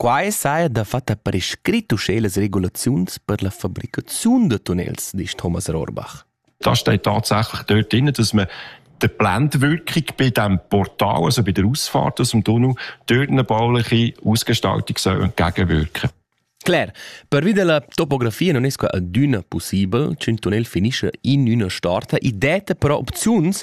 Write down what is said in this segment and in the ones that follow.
Quai saja dafatta prescrit uschè las regulaziuns per la fabricaziun da tunnels, disch Thomas Rohrbach. Da steht tatsächlich dort drin, dass man die Blendwirkung bei diesem Portal, also bei der Ausfahrt aus dem Tunnel, durch eine bauliche Ausgestaltung soll entgegenwirken Klar, pervia della topografia non esco adüna possibel ch'ün tunnel finisce in üna starta e detta però opziuns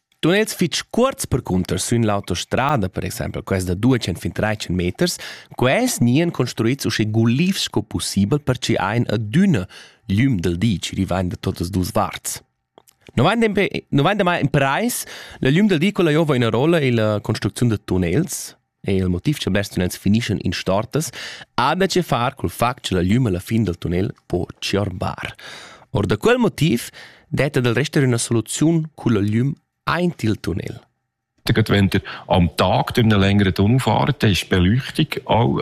Tun els fitg cuorts percunter sün l'autostrada, per exempel quels da 200 fin 300 meters, quels gnien construits usche gulivs sco pussibel per chi ein adüna l'üm del di chi rivain da totas duos varts. No vain dempe, no vain damai in prais la l'üm del di quella jova üna rolla illa construcziun da tunnels? è il motiv cha blers tunnels finischan in stortas, ha da che far cul fact cha la glüm alla fin dal tunnel po tschierbar. Or da quel motiv detta del resta üna soluziun culla glüm aint il tunnel. Wenn ihr am Tag durch eine längere Tunnelfahrt ist, Beleuchtung auch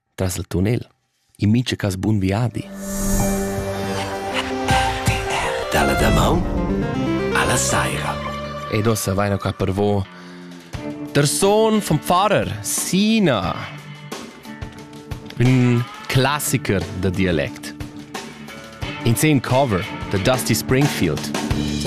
tras il tunnel, in mintga cas bun viadi. Dalla damaun alla saira. Ed ossa vaina qua per vo der Sohn vom Pfarrer Sina. Un classiker da dialect. In scene cover da Dusty Springfield.